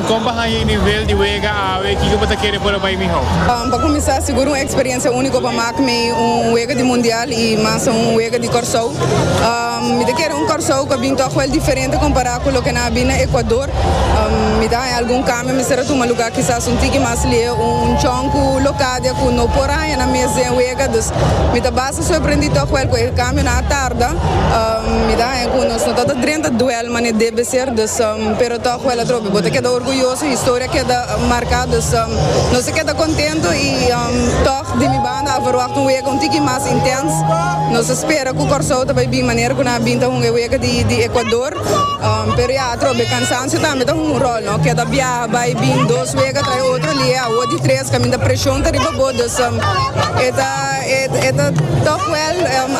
Kon bo haña e nivel di wega awe? Kiko bo ta kere por a bai mihó? Pa kuminsá, sigur un eksperensia úniko pa mak mi un wega di mundial i mas un wega di Kòrsou. Mi ta kere un Kòrsou ku a bin tòg wel diferente kompará ku loke nan a bin na Ekuador. Mi ta haña algun kambio, mi mester a tuma lugá kisas un tiki mas lié, un chon ku Locadia ku no por a haña nan mes den wega. Dus mi ta basta sorprendí tòg wel ku e kambionan a tarda. Mi ta haña ku nos no tabata drenta duèl. Mane debe ser dus pero toch wèl atrobe bo ta keda orguyoso historia keda marka dus nos a keda kontento i toch di mi banda a verwagt un wega un tiki mas intens nos a spera ku Kòrsou ta bai bin manera ku nan a bin ta hunga e wega di Ekuador pero ya atrobe kansansio tambe ta hunga un ròl no keda biaha bai bin dos wega tras e otro lihe awor di tres kaminda preshon ta riba bo dus e ta toch wèl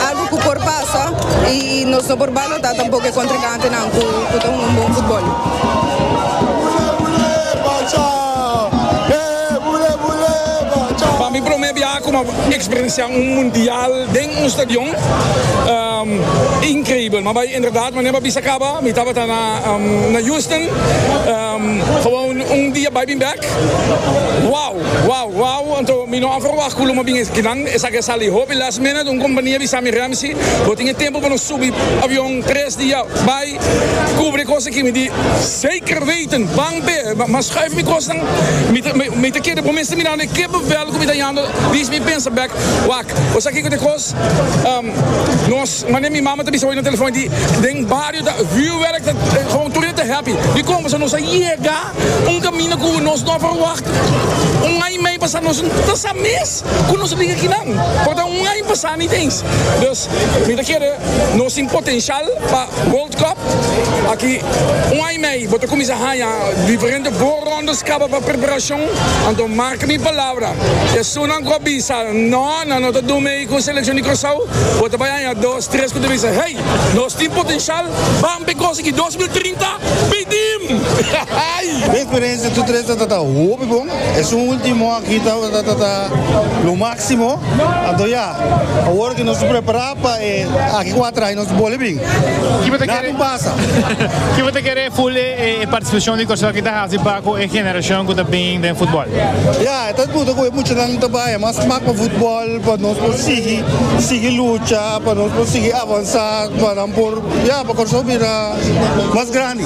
algu ku por pasa. sa y nos no por balota tampoco e contricante nan cu ta hunga un bon futbol. Pa mi prome biaha cu m'a experiencia un mundial den un stadion increibel m'a bay en verdad manera m'a bisa caba mi tabata na Houston, un dia bay bin bek wow. Wow wow anto mi no a verwagt cu lo mo bin esaki nan, esaki a sali hopi last minute, un compania bisa mi Ramsey bo tin e tempo pa nos subi avion tres dia bay cubri e cos aki mi di zeker weten ban pe ma schuif mi cosnan mi ta keda bo mes ta mirando e kippenvel cu mi ta yando dis mi pensa bek wak cosa kico ta e cos nos manera mi mama ta bisa hoy na telefon e di den bario ta vuurwerk ta gewoon tur ta happy mi con bo so nos a yega. Un kaminda ku nos no a ferwagt. Un aña mei pasa nos no ta sa mes ku nos a bin aki nan. Por ta un aña pasa ni tens. Dus mi ta kere nos tin potenshal pa World Cup. Aki un aña mei bo ta kuminsá haña diferente voorrondes kaba pa preparashon. Anto marka mi palabra, esunnan ku a bisa no nan no ta durmi ku selekshon di Kòrsou bo ta bai haña dos. Stres ku ta bisa, Hey! Nos tin potenshal! Ban pe gosi ki dos mil trinta! Pidim! Ay! Mi eksperensia tur tres tabata ta hopi bon. E su último aki tabata ta lo máksimo. Anto ya, awor ku nos ta prepará pa e aki kuater aña, nos ta bole bin. Nada tin pasa. Kiba ta kere ful e partisipashon di Kòrsou aki ta hasi pa ku e generashon ku ta bin den futbòl? Ya, e ta disputa ku e muchanan ku ta bai mas smak pa futbòl. pa nos por sigui sigui lucha pa nos por sigui avansa pa nan por ya pa Kòrsou bira mas grandi.